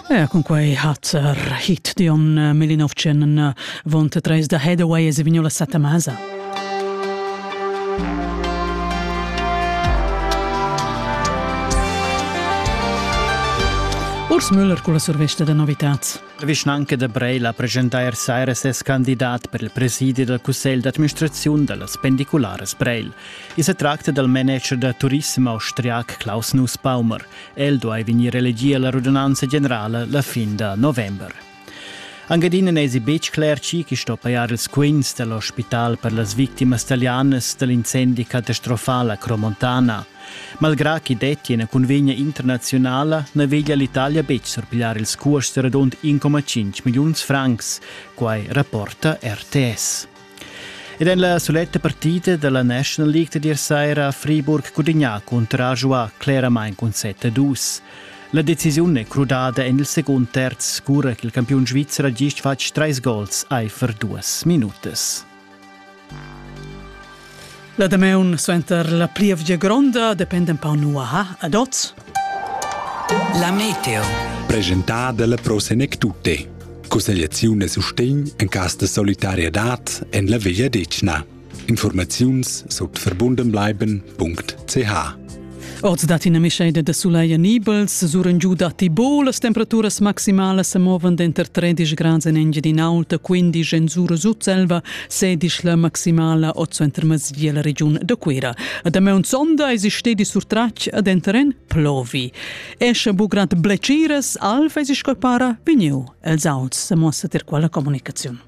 Ja, con quei hat hit Dion Melinovcen vont treis da Headaway e Vignola Satamasa. Urs Müller con la survesta da novitats. La vischnanca da Breila presenta er saira ses candidat per il presidi dal cussegl d'administrazione dallas pendiculares Breil. I se tracta dal manager da turismo austriac Klaus Nussbaumer. El duai vegnir elegì a la radunanza generala la fin da november. Anche adina n'esi betg cler chi chi sto pajar ils quints dell'ospital per las victimas italianas dall'incendi catastrofal a Cromontana. Malgrà chi detti ina convegna internaziunala na veglia l'Italia betg surpigliar ils cuosts radund 1,5 milliuns francs, quai rapporta RTS. Ed en la suletta partida dalla National League da dir saira ha Friburg gudignà cuntragiuà cleramain cun 7-2. La decisiun è crudada en il secund terz, cura ch'il campiun svizzer ha gist fatg trais gols aifer duas minutas. La damaun suenter la plievgia gronda dependa un pau nuaha ad oz. La meteo. Presentada dalla Pro Senectute. Cussegliaziun e sustegn en cas de solidariedad en la Veglia Decna. Informaziuns sut verbundenbleiben.ch Oz dat ina mischeida da sulegl nibels, suren giu datti bo, las temperaturas maximalas sa movan denter 13 grads en Engiadin'Aulta, 15 en Sura Sutselva, 16 la maximala oz entermezia la regiun da Cuira. A damaun sonda eis stedi surtratg ad enteren plovi. Esce bu grad bleciras, alf eis sco para vegniu els auts, sa mossa ter quella comunicaziun.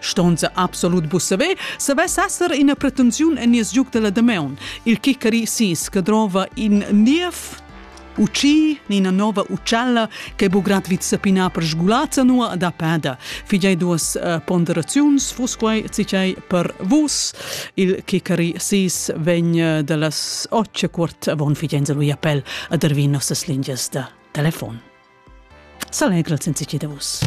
Ston se absolut bu saver, savess esser ina pretensiun en nies giug della Dameun, il Kikari Sis, che drova in niev uci ina nova ucella che bu grad vid sapina per sgulazza nua da peda. Figei duas uh, ponderaziuns, vus quei cicei per vus. Il Kikari Sis vegn eh, dallas occe quart avon figenza lui appel ad ervir nossas lingias da telefon. S'allegra sensici da vus.